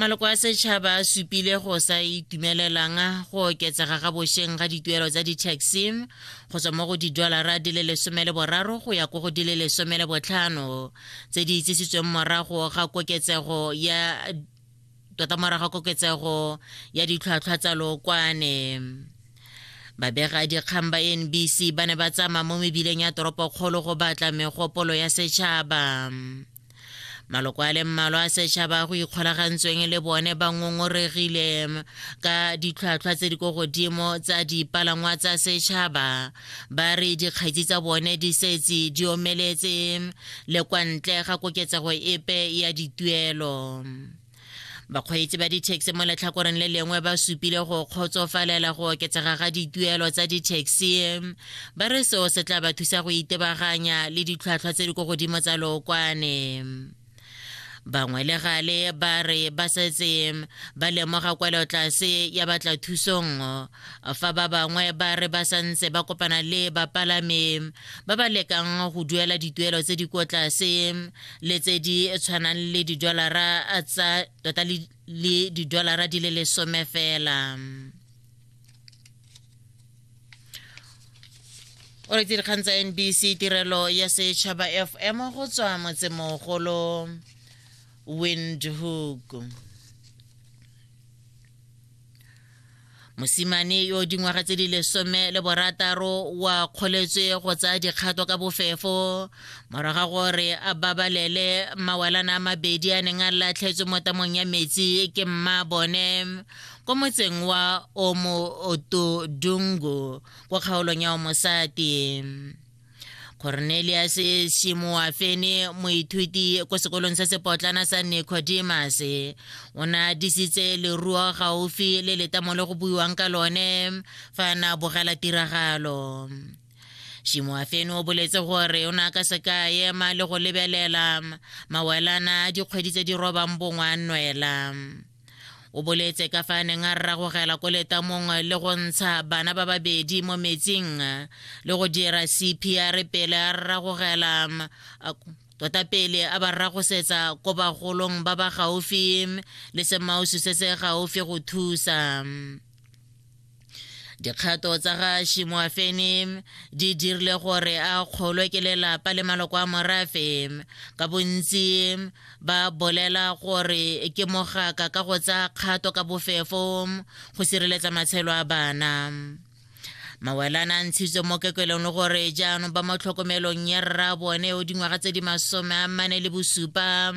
maloko a setšhaba a supile go sa itumelelang go oketsega ga bošeng ga dituelo tsa di-taxi go tswa mo go didolara di le lesome le boraro go ya ko go di le lesome le botlhano tse di itsisitsweng morago ga koketsego ya tota morago ga koketsego ya ditlhwatlhwa tsa lokwane babega dikgang ba nbc ba ne ba tsamaya mo mebileng ya toropokgolo go batla megopolo ya setšhaba maloko a le mmalwa a setšhaba go ikgolagantsweng le bone ba ngongoregile ka ditlhwatlhwa tse di ko godimo tsa dipalangwa tsa setšhaba ba re dikgetsi tsa bone di setse di omeletse le kwa ntle ga koketsego epe ya dituelo bakgweetsi ba ditaxi mo letlhakoreng le lengwe ba supile go kgotsofalela go oketsega ga dituelo tsa ditaxi ba re seo se tla ba thusa go itebaganya le ditlhwatlhwa tse di ko godimo tsa lookwane bangwe le gale ba re ba setse ba lemoga kwelo tlase ya batla thusong fa ba bangwe ba re ba santse ba kopana le bapalami ba ba lekang go duela dituelo tse di ko tlase le tse di tshwanang le didolara tsa tota le didolara di le lesome fela o re dikgang tsa nbc tirelo ya setšhaba fm go tswa motsemogolo windhoek mosimane yo dingwaga tse di lesome le borataro wa kgoletswe go tsaya dikgato ka bofefo moraga gore a babalele mawalana a mabedi a neng a latlhetswe mo tamong ya metsi ke mma bone ko motseng wa omo otodungu ko kgaolong ya omosati cornelius shimoafe ne moithuti ko sekolong se sepotlana sa nicodemus o ne a disitse leruo gaufi le letamo le go buiwang ka lone fa na bogela tiragalo shimoafene o boletse gore o ne a ka se ka ema le go lebelela mawelana a dikgwedi tse di robang bongwa nwela o boletse ka fa a neng a rragogela ko letamong le go ntsha bana ba babedi mo metsing le go dira cpr pele a rragogela tota pele a ba rragosetsa ko bagolong ba ba gaufi le semausu se se gaufi go thusa dikgato tsa ga shimoafene di dirile gore a kgolwe ke lelapa le maloko a morafe ka bontsi ba bolela gore ke mogaka ka go tsaya kgato ka bofefo go sireletsa matshelo a bana mawelana a ntshitswe mo kekelong le gore jaanong ba mo tlhokomelong ya rra bone o dingwaga tse di masome a mane le bosupa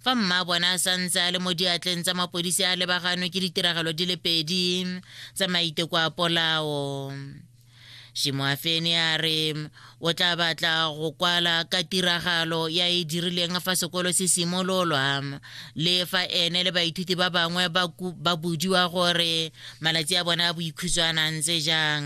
fa mmaabone a santse a le mo diatleng tsa mapodisi a lebaganwe ke ditiragalo di le pedi tsa maiteko a polao shimoafeni a re o tla batla go kwala ka tiragalo ya e dirileng fa sekolo se simololwa le fa ene le baithuti ba bangwe ba budiwa gore malatsi a bone a boikhutshwana ntse jang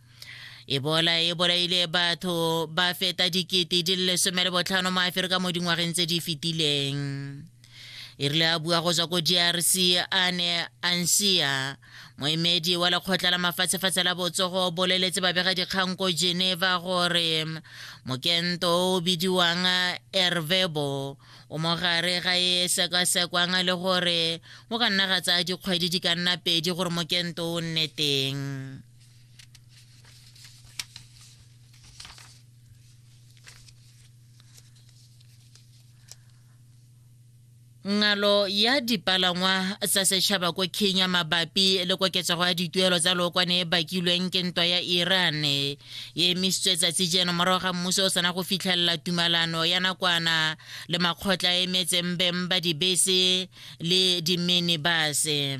Ebola e bolaile batho ba feta dikete di le lesome le botlhano mo Aferika mo dingwageng tse di fetileng. E rile a bua go tswa ko DRC a ne a nsia moemedi wa lekgotla la mafatshefatshe la botsogo o boleletse babega dikgang ko Geneva gore mokento o o bidiwang Ervebo o mo gare ga e sekasekwang le gore go ka nna ga tsaya dikgwedi di ka nna pedi gore mokento o nne teng. ngalo ya dipalangwa tsa setšhaba ko kenya mabapi le koketsego ya dituelo tsa lookwane e bakilweng ke ntwa ya iran e emisitswe tsatsi jeno morago ga mmuso o sena go fitlhelela tumalano ya nakwana le makgotla a emetseng beng ba dibese le diminibase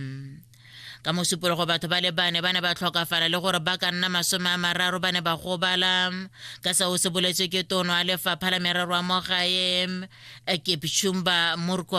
ka mosupologo batho ba le bane ba ne ba tlhokafala le gore ba ka nna masome a mararo ba ne ba gobala ka seo se boletswe ke tono a lefapha la merero a mo gae ekepchumba murko